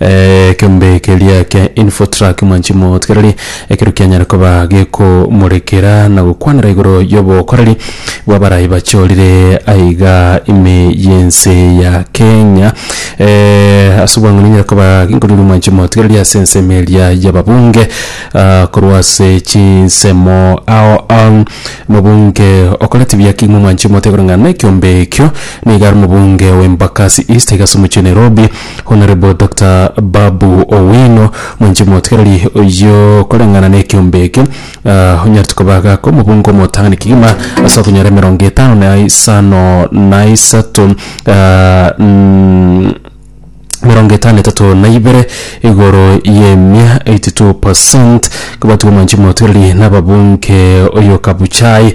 Ekeombe keria kia Infotrak mwanchi motigereri ekero kianyare koba gekomorekera na gokwanera igoro y'obokoreri bw'abarai bachorire aiga ime y'ense ya Kenya. Ase obwang'ani enyare koba genkoriroria mwanchi motigereri ase ensemo eria y'ababunge korwa ase chinsemo ao omobunge okoreti buya kegima mwanchi motiga koreng'ana na ekeombe ekio niga are omobunge o Embakasi East aiga ase omochie o Nairobi. Honourable Doctor Babu Owino, mwanche motigareri oyio koreng'ana n'ekiombe eke, ah, onyarete koba gaka omobungo omotang'ani kegima ase okonyora emerongo etano na isano na isato ah, mm, emerongo etano na etato na ibere igoro y'emia 82% kobatigwa mwanchi motigareri nababunge oyo Kabuchai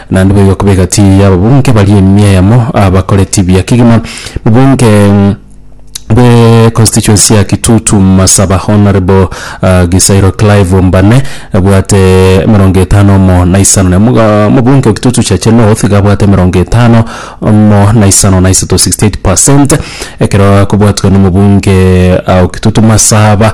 Naende boigo kobegati y'ababunge baria emia yamo abakoreti buya kegima. Mobunge bwe constituency ya Kitutu Masaba Honourable Gisairo Clive Ombane abwate emerongo etano omo na isano na emo. Mobunge o Kitutu Chache North iga abwate emerongo etano omo na isano na isato, 68%, ekero akobwatwa nomobunge o Kitutu Masaba.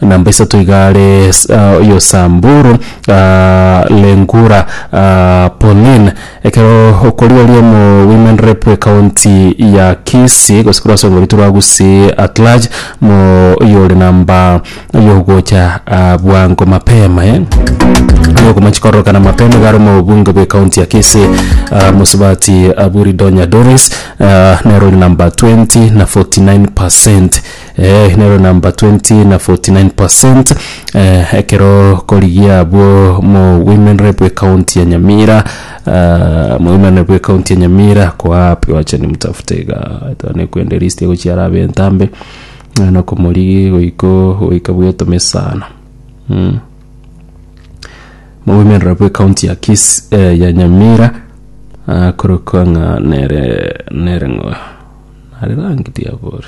Namba isato iga are Yosamburu, Lengura, Polin. Ekero okoria oria omo women rep ekaunti ya Kisii gose korwasongoritwe rwa Gusii at large mo oyore namba yogocha bwango mapema eh yokomanchi kororokana mapema iga are omo obunge bwe ekaunti ya Kisii Mosubati Aburi Donya Doris nere ore namba 20 na 49 percent. Eh, nero number 20 na 49 percent eh, ekero korigia abwo mu women rep ekaunti ya nyamira uh, mu women rep ekaunti ya nyamira koapi wacha nimutafute iga tone kwende list egochiara abe entambe Eh, nokomorigi goiko goika bwetome sana mm. mu women rep ekaunti ya kis eh, ya nyamira uh, korokwa ng'a nere nere ng'o nare rangi diabori